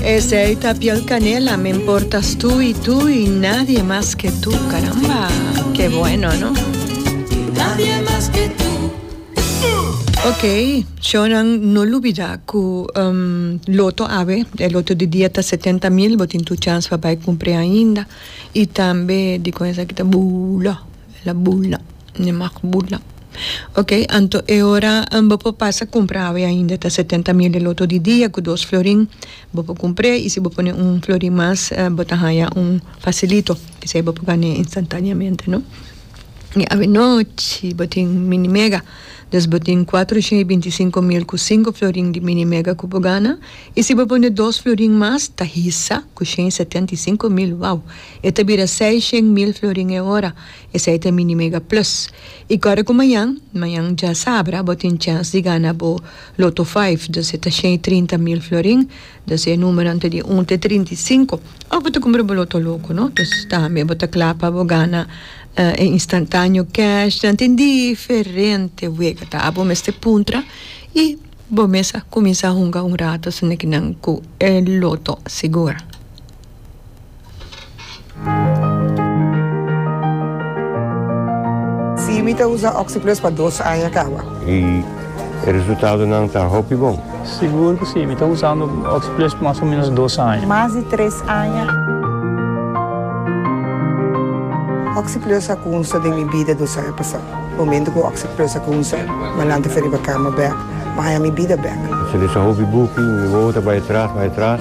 Esey ta piel canela me importas tu y tu y nadie mas ke tu caramba ke bueno no. Nadie mas ke tu. Ok shownan no lubida ku um loto awe e loto di dia ta setenta mil bo tin tur chans pa bay kumpre ainda y tambe di kon esaki ta bula ela bula. Ni mag burla. Ok, anto e ora bo por pasa cumpra awe ainda ta setenta mil e loto di dia cu dos florin bo por cumpr'e y si bo pone un florin mas bo ta haya un facilito esey bo por gan'e instantaneamente no. Y awe nochi bo tin mini mega dus bo tin cuatro shen y binti cinco mil cu cinco florin di mini mega cu bo gana y si bo pone dos florin mas ta hisa cu shen y setenta y cinco mil wow e ta bira seis shen mil florin e ora. Esei ta mi Nimega Plus. I kòrda ku mañan, mañan dja sabra, bo tin chèns di gana bo Loto Five, dus e ta shei trinta mil florin, dus e numeronan ta di un te trinta i sinku, òf bo ta kumpra bo Loto Loko, no? Dus tambe bo ta kla pa bo gana e instantaneo kèsh. Nan tin diferente wega, ta abo mester puntra i bo mes a kuminsá hunga un rato, sino ke nan ku e loto sigur. Sí, mi ta usa Oxyplus pa dos aña kawa. I e resultadonan ta hopi bon? Sigur ku sí, mi ta usando Oxyplus pa mas o ménos dos aña. Mas di tres aña. Oxyplus a kunsa den mi bida dos aña pasá. Momentu ku Oxyplus a kunsa, mi a lanta fi riba kama bèk, mi a haña mi bida bèk. Mi salesa hopi buki, mi wowo ta bai atras, bai atras.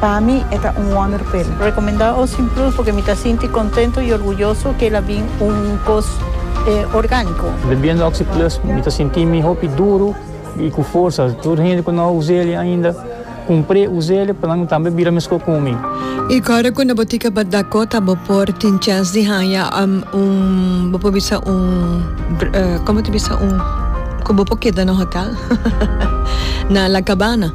Pa mi e ta un honor pel. Recomenda Ocean Plus porque mi ta sinti contento y orguyoso que el a bin un cos organico. Bebiendo Oxy Plus mi ta sinti mi hopi duro y cu forsa. Tur e hende cu no a usel'e ainda cumpre usel'e pa nan tambe bira mesco cu mi. Y ora cu na bo tica pa Dakota bo por tin chance di haya un bo por bisa un como ta bisa un cu bo por keda na hotel na La Cabana.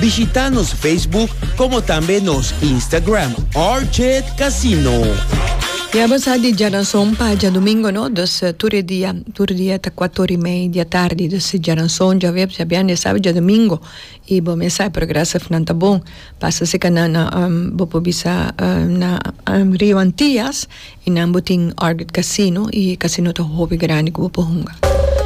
Bishita nos Facebook como tambe nos Instagram Orchid Casino. Ya bo sa di djaranson pa djadumingo no, dus tur e dia, tur dia ta kuat ora i mei di atardi, dus djaranson, djaweps, djabièrnè, sábado, djadumingo, i bo mesa e progrès of nan ta bon, pasa si ka nan bo por bisa na Rio Antias i nan bo tin Orchid Casino i e casino ta hopi grandi ku bo por hunga.